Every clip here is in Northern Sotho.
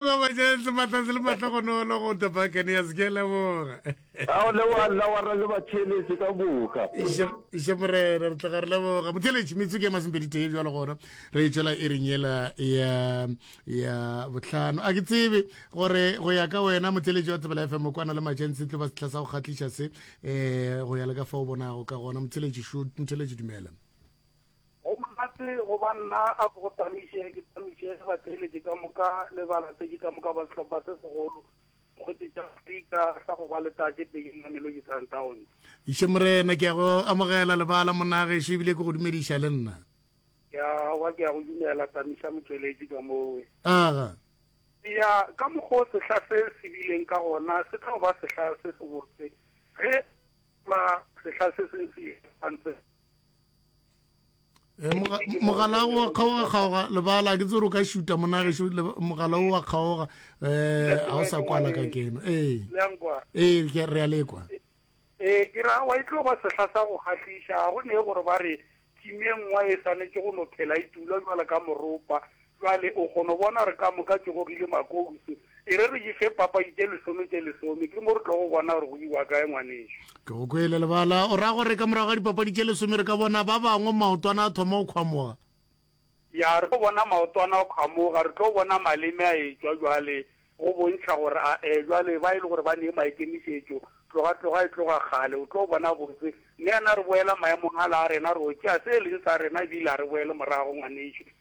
Ba ba jang sebatla se le mahlogonolo go The Buccaneers. Ke a leboga. A o leboga nna wa ra le batheeletše ka moka. Iše morena re tloga re leboga motheletši metsu ke masempeditee bjalo gona re itšwela e reng yela ya ya bohlano a ke tsebe gore go ya ka wena motheletši wa tsebela fm o kwana le matšentsi tlo ba sehla sa go kgatliša se um go ya le ka fa o bonago ka gona motheletši motheletši dumela Go monate go ba nna a ko go tamiše, ke tamiše batheeletši ka moka le balatedi ka moka ba sehlopha se segolo Mokgotse tša Afrika sa go ba le tate Peying Mamelodi Sundowns. Išo Morena, ke a go amogela lebala monna gešo ebile ke go dumediša le nna. Ke a wa, ke a go dumela Tamiša motšweletši ka mowe. Aga. Eya, ka mokgwa o sehla se se bileng ka gona se tlo ba sehla se sebotse ge ba sehla se se se ipantse. Eh, mogala wa kgaoga kgaoga lebala ke tsere o ka šuta monageso mogala o wa kgaoga um eh, ga o sa kwala ka keno ee eh. ke re a lekwa ee ke ra wa e tlo ba sehla sa go kgatlhiša ga go ne gore ba re timengwa e swanetse go no phela e tula jwale ka moropa Bjale, o kgono bona gore ka moka tše gogile makousu. E re re di fe papadi tše lesome tše lesome, ke mo re tlogo bona gore go iwa kae, ngwanešu. Ke go kwele, lebala. O ra gore ka morago ga dipapadi tše lesome re ka bona ba bangwe maotwana a thoma go kgwamoga? Ya, re tlo bona maotwana a kgwamoga, re tlo bona maleme a etšwa bjale, go bontšha gore a e, bjale, ba e le gore ba nee maikemišetšo, tloga, tloga e tloga kgale. O tlo bona botse. Mme a na re boela maemong ala a rena, re yo tšea se e leng sa rena ebile a re boele morago, ngwanešu.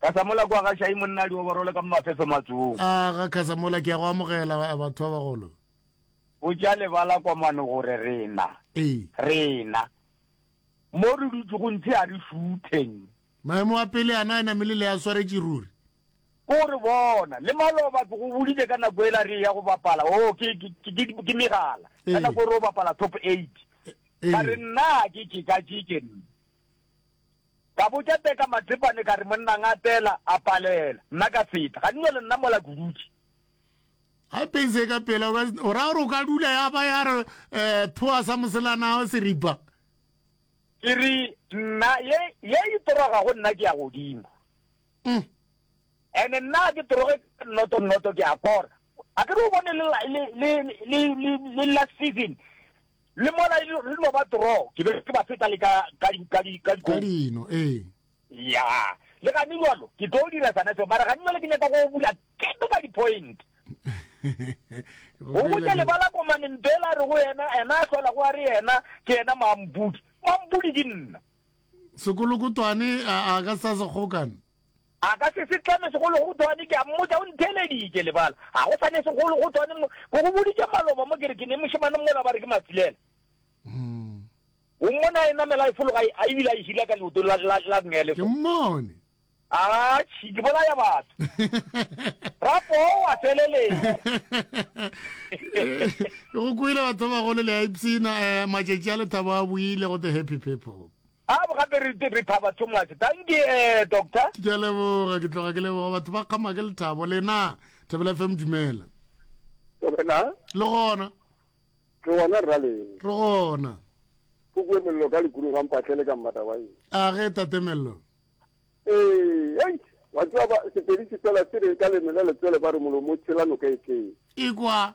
Kasamola kwa ga Shai monna di oborole ka mo mafeso matsong. A ga Kasamola ke ya go amogela batho ba bagolo. Go tša lebala kwa mano gore rena. Ee. Rena. Mo re dutse go ntshe a re shutheng. Maemo a pele ana a namile le a swaretše ruri. Ko re bona le maloba ke go boditse ka nako ela re ya go bapala o oh, ke ke megala ka nako re o bapala top 8 ka re nna ke ke ka ke ke Ka botša Teka Matsepane ka re, Monna ngatela, a palela. Nna ka feta. Ga di no le nna mola ke dutše. Ga e peng se ka pela, o ra gore o ka dula ya ba ya re eh, thoa sa moselana wa seripa. Ke re, Nna, ye, ye e toroga go nna ke ya godimo. Mm. Ene nna ke toroge nnoto nnoto ke a kora. A ke re o bone le, le, le, le, le, le last season, Le mola e le no ba toro, ke be ke ba feta le ka, ka di, ka di, ka Ka dino, ee. Ya. Le gane jalo, ke tlo dira sana seo, mara gane jalo ke nyaka go bula keto ka di-point. Go botša lebala komane mpela re go yena, ena a hlola go a re yena, ke yena mampudi. Mampudi ke nna. Sekolokotwane a, a ka sa se kgokana. A ka se se tlame segologotwane, ke a mmotša, o ntheeleditše, lebala, ga go sa ne segologotwane mo, ke go boditše maloba mo, ke re ke ne mošemane mola ba re ke Matsilela. O mmone a e namela a e fologa a ebile a e hila ka leotong la, la, la Gnele fo. Ke mmone. Atšhi, ke bolaya batho. Rapo o a feleletša. Go kwele batho ba bagolo le a ipshina, eh, matšatši a lethabo a buile go the happy people. A bo gape re re thaba too much. Thank you eh doctor. Ke a leboga ke tloga ke leboga batho ba kgama ke lethabo lena Thapelo FM dumela. Wena. Le gona. Re gona rra le. Re gona. Go bua mello ka likuru ga mpatlele ka mmata wa eng. A ge tate mello. Eh, hey. Wa tswa ba sepedi se fela se re ka lemela letsele ba re molomo tshela noka e tleng. Ikwa.